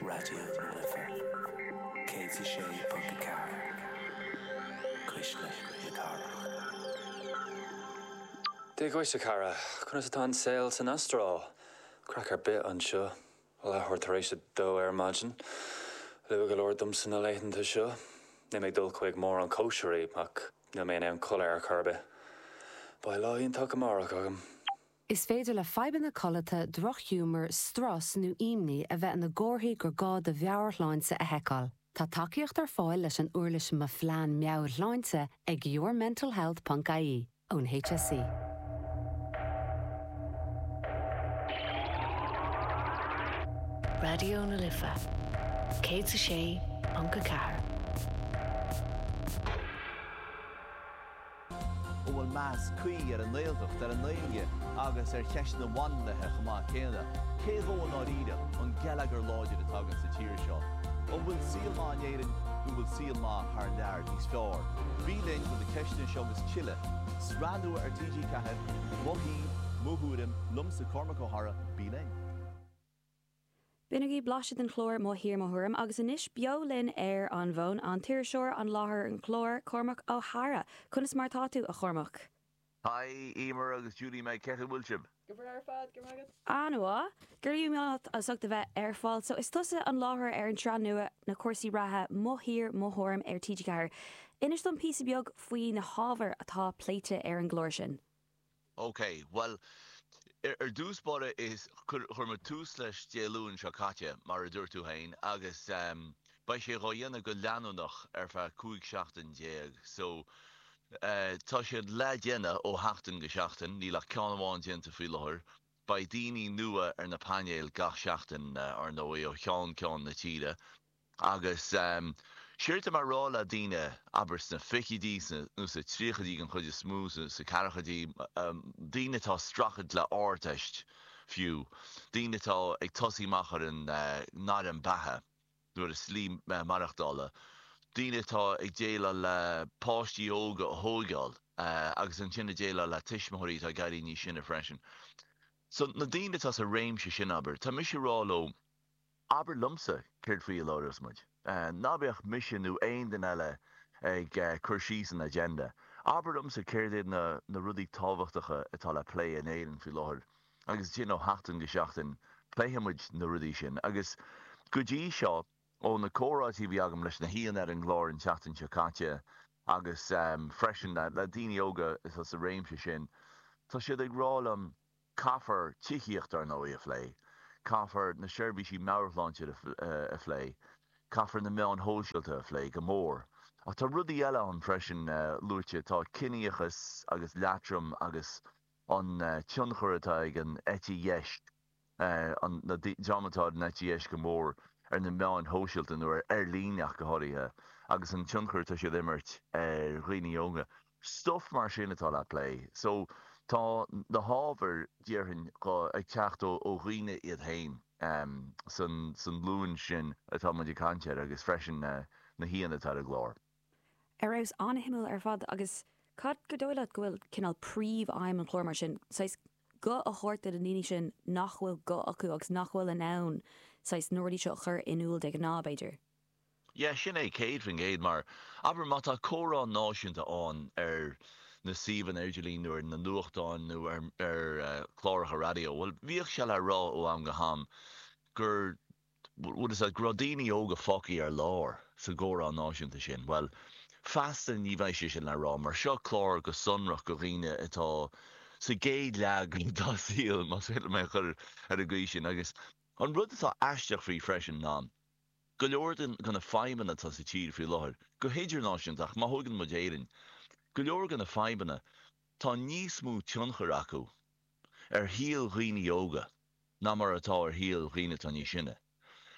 Raidió na Life 106.4, Cuisle na Cathrach. Dia dhuit, a chara. Conas atá an saol san Astráil? Craic ar bith anseo. Leathuair tar éis a dó ar maidin. Luath go leor domsa na laethanta seo. Níl mé ag dul chuig mórán cóisirí, ach níl mé in ann codladh ar chor ar bith. Beidh lá iontach amárach agam. Is féidir le fadhbanna codlata, drochghiúmar, strus nó imní a bheith ina gcomharthaí gur gá do mheabhairshláinte a sheiceáil. Tá tacaíocht ar fáil leis an uirlis Mo Phlean Meabhairshláinte ag yourmentalhealth.ie ón HSE. Raidió na Life 106.4. An bhfuil meas cuí ar an nGaeltacht, ar an nGaeilge agus ar cheisteanna féiniúlachta chomh maith céanna? Cé dhó i ndáiríre an geilleagar láidir atá againn sa tír seo? An bhfuil saol maith in Éirinn nó an bhfuil saol maith thar lear níos fearr? Bí linn do na ceisteanna seo agus tuilleadh. Sraith nua ar TG4, Mo Thír, Mo Thuairim, liomsa Cormac Ó hEadhra, bí linn. B'in agaibh blaiseadh den chlár Mo Thír Mo Thuairim agus anois beo linn ar an bhfón, an t-iriseoir, láithreoir an chláir, Cormac Ó hEadhra. Conas mar atá tú, a Chormaic? Haigh, Emer agus Judy Mag Cén chaoi a bhfuil sibh? Go breá ar fad, go raibh maith agat. An-mhaith. Go raibh maith agat as ucht a bheith ar fáil. So, is tusa an láithreoir ar an tsraith nua cúrsaí reatha, Mo Thír, Mo Thuairim ar TG4. Inis dom píosa beag faoi na hábhair atá pléite ar an gclár sin. OK, bhuel, ar dtús báire, chuir muid tús leis Dé Luain seo caite, mar a dúirt tú féin, agus beidh sé dhá dhéanamh go leanúnach ar feadh 15 seachtain. So, tá sé le déanamh ó sheachtain go seachtain, níl ach ceann amháin déanta faoi láthair. Beidh daoine nua ar na painéil gach seachtain, ar ndóigh, ó cheann ceann na tíre. Agus séard atá mé ag rá le daoine, abair sna fichidí nó sna tríochaidí den chuid is mó, sna ceathrachaidí, daoine atá ag streachailt le Ardteist fiú, daoine atá ag tosaí amach ar an ngairm beatha nó ar a slí maireachtála, daoine atá ag déileáil le páistí óga a thóigeáil agus ansin ag déileáil le tuismitheoirí atá ag éirí níos sine freisin. So, na daoine atá sa réimse sin, abair, tá mise ag rá leo, Abair liomsa céard faoi a labhraíos muid. Ná bíodh mise nó aon duine eile ag cur síos an agenda. Abair liomsa céard iad na rudaí tábhachtacha atá le plé in Éirinn faoi láthair agus ansin ó sheachtain go seachtain pléifidh muid na rudaí sin. Agus go dtí seo, ó na comhráití a bhí agam leis na haíonna ar an gclár an tseachtain seo caite agus freisin le daoine óga atá sa réimse sin, tá siad ag rá liom, Caithfear tithíocht, ar ndóigh, a phlé. Caithfear na seirbhísí meabhairshláinte a phlé. Caithfear na meáin shóisialta a phlé, go mór. Ach tá rudaí eile ann freisin, luaite, tá ciníochas agus leatrom agus an tionchar atá ag an eite dheis, na dreamanna atá ar an eite dheis go mór, ar na meáin shóisialta, nó ar líne ach go háirithe, agus an tionchar atá siad a imirt ar dhaoine óga. Stuif mar sin atá le plé. So, tá na hábhair, déarfainn, ag teacht ó dhaoine iad féin sa nglúin sin atá muid ag caint air agus freisin na haíonna atá ar an gclár. Ar fheabhas, an-shuimiúil ar fad. Agus cad is dóigh leat go bhfuil cineál príomh-aidhm an chláir mar sin, saghas, guth a thabhairt do na ndaoine sin nach bhfuil guth acu agus nach bhfuil in ann, saghas, na rudaí seo a chur in iúl de ghnáth, b'fhéidir? Yeah, sin é, 100%, mar, abair, má tá comhrá náisiúnta ann ar na suíomhanna idirlín nó ar na nuachtáin nó ar, ar eh, chláracha raidió, bhuel, bhíodh sé le rá ó am go ham gur, bhuel, go raibh daoine óga fágtha ar lár sa gcomhrá náisiúnta sin. Bhuel, feasta ní bheidh sé sin le rá mar seo clár go sonrach go dhaoine atá sa gcéad leath dá saol, más féidir liom é a chur ar an gcaoi sin, agus an rud atá aisteach faoi freisin ná, go leor de na fadhbanna atá sa tír faoi láthair, go hidirnáisiúnta ach má thógann muid Éirinn, go leor de na fadhbanna, tá níos mó tionchair acu ar shaol dhaoine óga ná mar atá ar shaol dhaoine atá níos sine.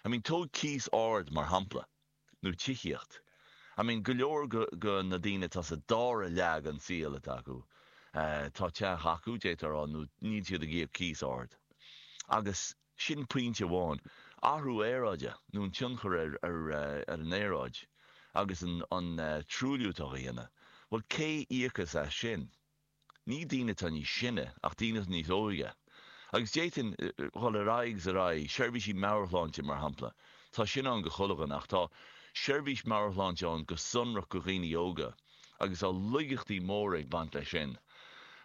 I mean tóg cíos ard mar shampla, nó tithíocht. I mean go leor de na daoine atá sa dara leath den saol atá acu, tá teach acu, d'fhéadfá a rá, nó níl siad ag íoc cíos ard. Agus. Sin pointe amháin, athrú aeráide, nó an tionchar ar an aeráid agus an truailliú atá á dhéanamh. Bhuel, cé íocas as sin? Ní daoine atá níos sine, ach daoine atá níos óige. Agus d'fhéadfainn dul ar aghaidh is ar aghaidh, seirbhísí meabhairshláinte mar shampla. Tá sin ann go coiteann, ach tá seirbhís meabhairshláinte ann go sonrach go dhaoine óga, agus tá laigeachtaí móra ag baint leis sin.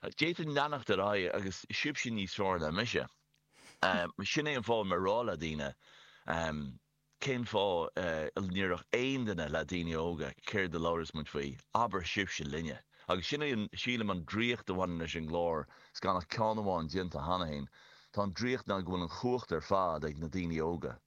D'fhéadfainn leanacht ar aghaidh, ach is sibhse níos fearr ná mise. Sin é an fáth mar a rá le daoine, Cén fáth a ndéarfadh aon duine le daoine óga, Céard a labhras muid faoi? Abair sibhse linne. Agus sin é, sílim, an draíocht a bhaineann leis an gclár, 's gan ach ceann amháin déanta cheana féin, tá an draíocht ná go bhfuil an chumhacht ar fad ag na daoine óga.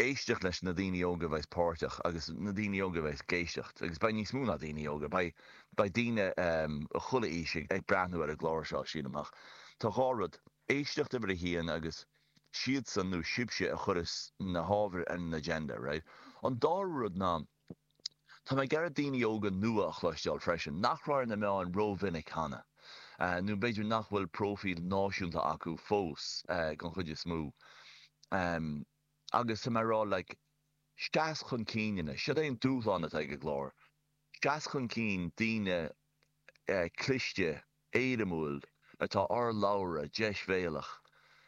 éisteacht leis na daoine óga a bheas páirteach agus na daoine óga a bheas ag éisteacht, agus beidh níos mó ná daoine óga, beidh daoine ó chuile aois ag breathnú ar an gclár seo, sílim, ach tá dhá rud, éisteacht uimhir a haon agus siadsan nó sibhse a chuirfeas na hábhair ar an agenda, right? An dara rud ná, tá mé ag iarraidh daoine óga nua a chloisteáil freisin nach raibh ar na meáin rómhinic cheana, nó b'fhéidir nach bhfuil próifíl náisiúnta acu fós, den chuid is mó. agus tá mé ag rá like seas chun cinn anois, siod é an dúshlán atá ag an gclár, seas chun cinn daoine cliste, éirimiúil, ardlabhartha, deisbhéalach,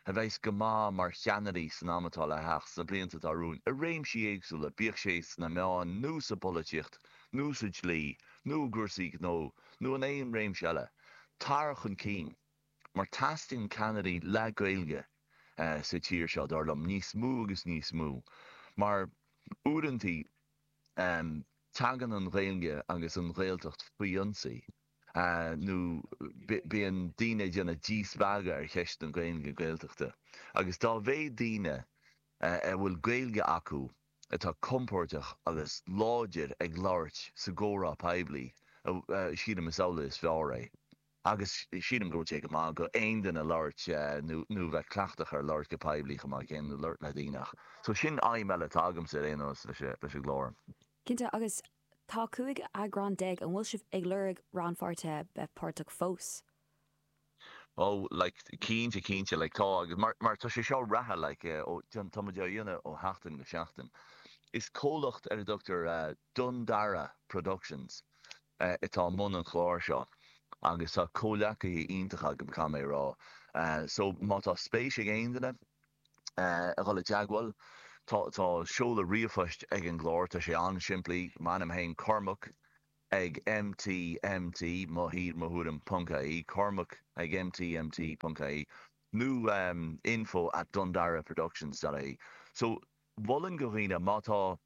a bheas go maith mar cheannairí san am atá le theacht, sna blianta atá romhainn, i réimsí éagsúla, bíodh sé sna meáin nó sa bpolaitíocht nó sa dlí nó i gcúrsaí gnó nó in aon réimse eile. Tar chun cinn. mar teastaíonn ceannairí le Gaeilge sa tír seo, dar liom, níos mó agus níos mó, mar uaireantaí tagann an Ghaeilge agus an Ghaeltacht faoi ionsaí, nó bíonn daoine ag déanamh díspeagadh ar cheist na Gaeilge Gaeltachta, agus dá mhéad daoine a bhfuil Gaeilge acu atá compordach agus láidir ag labhairt sa gcomhrá poiblí, sílim is amhlaidh is fearr é. Agus sílim go bhfuil sé go maith d'aon duine labhairt nó bheith cleachtach ar labhairt go poiblí chomh maith céanna nó labhairt le daoine ach so sin aidhm eile atá agamsa ar aon nós leis an gclár. Cinnte, agus tá cúig eagrán déag, an bhfuil sibh ag lorg rannpháirtithe le bheith páirteach fós? Ó like cinnte cinnte like tá agus mar mar tá sé seo reatha like tá muid á dhéanamh ó sheachtain go seachtain. Is comhlacht ar a dtugtar Dundara Productions atá i mbun an chláir seo agus tá comhleacaithe iontacha agam, caithfidh mé a rá. So, má tá spéis ag aon duine a dhul i dteagmháil, tá seoladh ríomhphoist ag an gclár, tá sé an-simplí, m'ainm féin, Cormac ag MT, MT, mo thír, mo thuairim, ponc, ie Cormac ag MT, MT, ponc, ie nó info at dundaraproductions.ie. So. Mholfainn do dhaoine, má tá,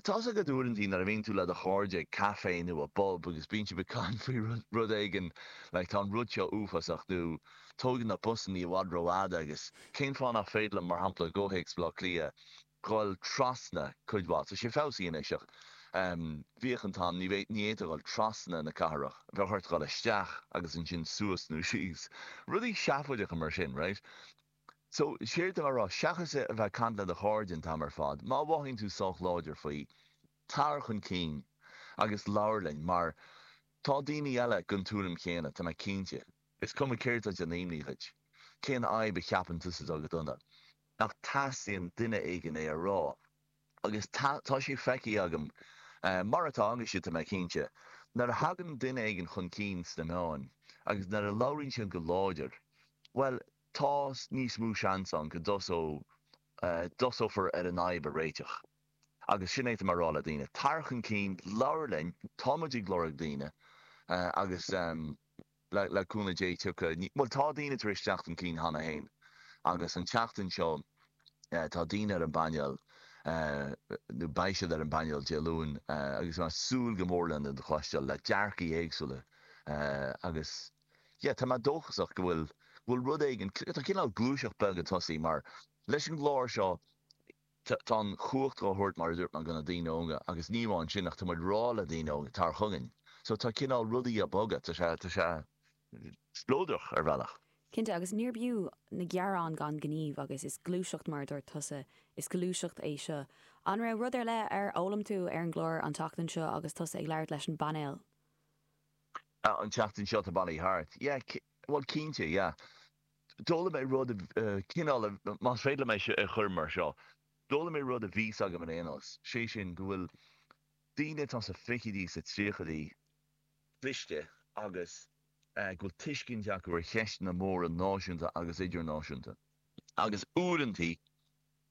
Tá's agat uaireantaí nuair a bhíonn tú le do chairde ag caife nó i bpub agus bíonn sibh ag caint faoi rud éigin like tá an rud seo uafásach nó tógann na busanna i bhfad rófhada agus cén fáth nach féidir le, mar shampla, i gcomhthéacs Bhaile Átha Cliath, dhul trasna cuid mhaith, tá sé feabhsaithe anois ach em bhíodh an t-am, ní fhéadfá dhul trasna na cathrach, bheadh ort dhul isteach agus ansin suas nó síos, rudaí seafóideacha mar sin, right? So, séard atá mé a rá, seachas a bheith ag caint le do chairde an t-am ar fad, má mhothaíonn tú sách láidir faoi, tar chun cinn agus labhair linn, mar tá daoine eile den tuairim chéanna, tá mé cinnte. Is cuma céard a d'imigh ort, cén fhadhb a cheapann tusa atá go dona, ach teastaíonn duine éigin é a rá. Agus tá, tá sé feicthe agam, mar atá agaibhse, tá mé cinnte, nuair a thagann duine éigin chun cinn sna meáin agus nuair a labhraíonn siad go láidir, bhuel, tá níos mó seans ann go dtosófar ar an fhadhb a réiteach. Agus sin é atá mé a rá le daoine, tar chun cinn, labhair linn, tá muid ag lorg daoine, agus le cúnamh Dé tiocfaidh, bhuel, tá daoine tar éis teacht chun cinn cheana féin, agus an tseachtain seo tá daoine ar an bpainéal, nó beidh siad ar an bpainéal Dé Luain, agus tá mé ag súil go mór lena gcloisteáil, le dearcaí éagsúla, agus. Yeah, tá mé dóchasach go bhfuil, go bhfuil rud éigin, tá cineál gluaiseacht bheag ag tosaí mar leis an gclár seo tá, tá an chumhacht dhá thabhairt mar a dúirt mé do na daoine óga agus ní amháin sin ach tá muid rá le daoine óga tar chugainn so tá cineál rudaí a' bogadh, tá sé, tá sé spleodrach ar bhealach. Cinnte agus níorb fhiú na gearáin gan gníomh agus is gluaiseacht mar a dúirt tusa, is gluaiseacht é seo. An raibh rud ar leith ar fhoghlaim tú ar an gclár an tseachtain seo agus tusa ag labhairt leis an bpainéal? Ah, an tseachtain seo atá bailithe thart. Yeah, bhuel cinnte, yeah. D'fhoghlaim mé rud a, cineál a, más féidir liom é seo a chur mar seo, d'fhoghlaim mé rud a bhí a fhios agam ar aon nós, sé sin go bhfuil daoine atá sa fichidí, sa tríochaidí cliste agus go bhfuil tuiscint acu ar cheisteanna móra náisiúnta agus idirnáisiúnta agus uaireantaí,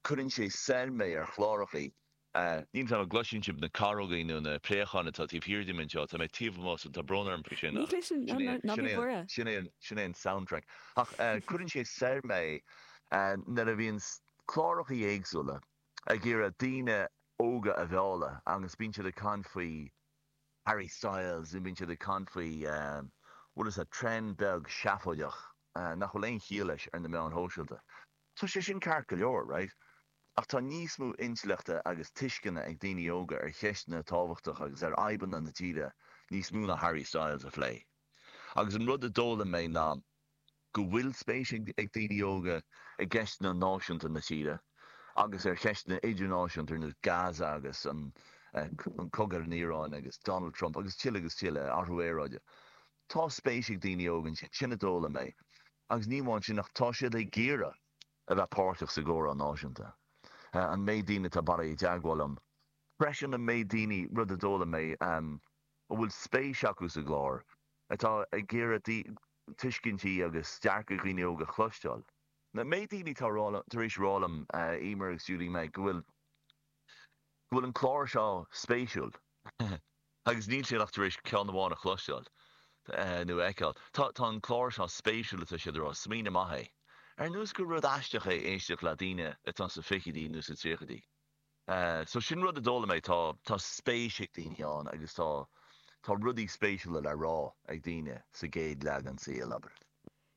Cuireann sé soir mé ar chlárachaí a. Níl a fhios agam an gcloiseann sibh, na carógaí nó na préacháin atá taobh thiar díom anseo. Tá mé taobh amuigh so tá brón orm faoi sin ach sin é, sin é, sin é, sin é an soundtrack. Ach cuireann sé soir mé nuair a bhíonn clárachaí éagsúla ag iarraidh daoine óga a mhealladh agus bíonn siad ag caint faoi Harry Styles nó bíonn siad ag caint faoi, bhfuil 'fhios a'd, trend beag seafóideach nach bhfuil aon chiall leis ar na meáin shóisialta. Tá sé sin ceart go leor, raight? Ach tá níos mó intleachta agus tuisceana ag daoine óga ar cheisteanna tábhachtacha agus ar fhadhbanna na tíre, níos mó ná Harry Styles, a phlé. Agus an rud a d'fhoghlaim mé ná go bhfuil spéis ag daoine óga i gceisteanna náisiúnta na tíre, agus ar cheisteanna idirnáisiúnta ar nós Gaza agus an cogadh ar an Iaráin agus Donald Trump agus tuilleadh agus tuilleadh, athrú aeráide. Tá spéis ag daoine óga ansin, sin a d'fhoghlaim mé, agus ní amháin sin ach tá siad ag iarraidh a bheith páirteach sa gcomhrá náisiúnta. An méid daoine atá ag fáil i dteagmháil liom, freisin, an méid daoine, rud a d'fhoghlaim mé, a bhfuil spéis acu sa gclár, atá ag iarraidh tuiscintí agus dearcaidh dhaoine óga a chloisteáil. An méid daoine atá tar éis a rá liom, amuigh as stiúideo, go bhfuil. go bhfuil an clár seo spéisiúil agus níl siad ach tar éis ceann amháin a chloisteáil nó a fheiceáil. Tá an clár seo spéisiúil atá siad a rá, smaoineamh maith é. Ar nós gur rud aisteach é éisteacht le daoine atá sna fichidí nó sna tríochaidí. So sin rud a d'fhoghlaim mé, tá spéis ag daoine ann agus tá rudaí spéisiúla le rá ag daoine sa gcéad leagan, sa gcaoi a labhair.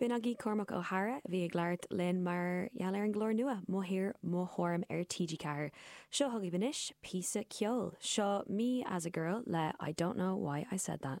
B'in agaibh Cormac Ó hEadhra a bhí ag labhairt linn mar gheall ar an gclár nua, Mo Thír, Mo Thuairim ar TG4. Seo chugaibh anois píosa ceoil. Seo Me As A Girl le I Don't Know Why I Said That.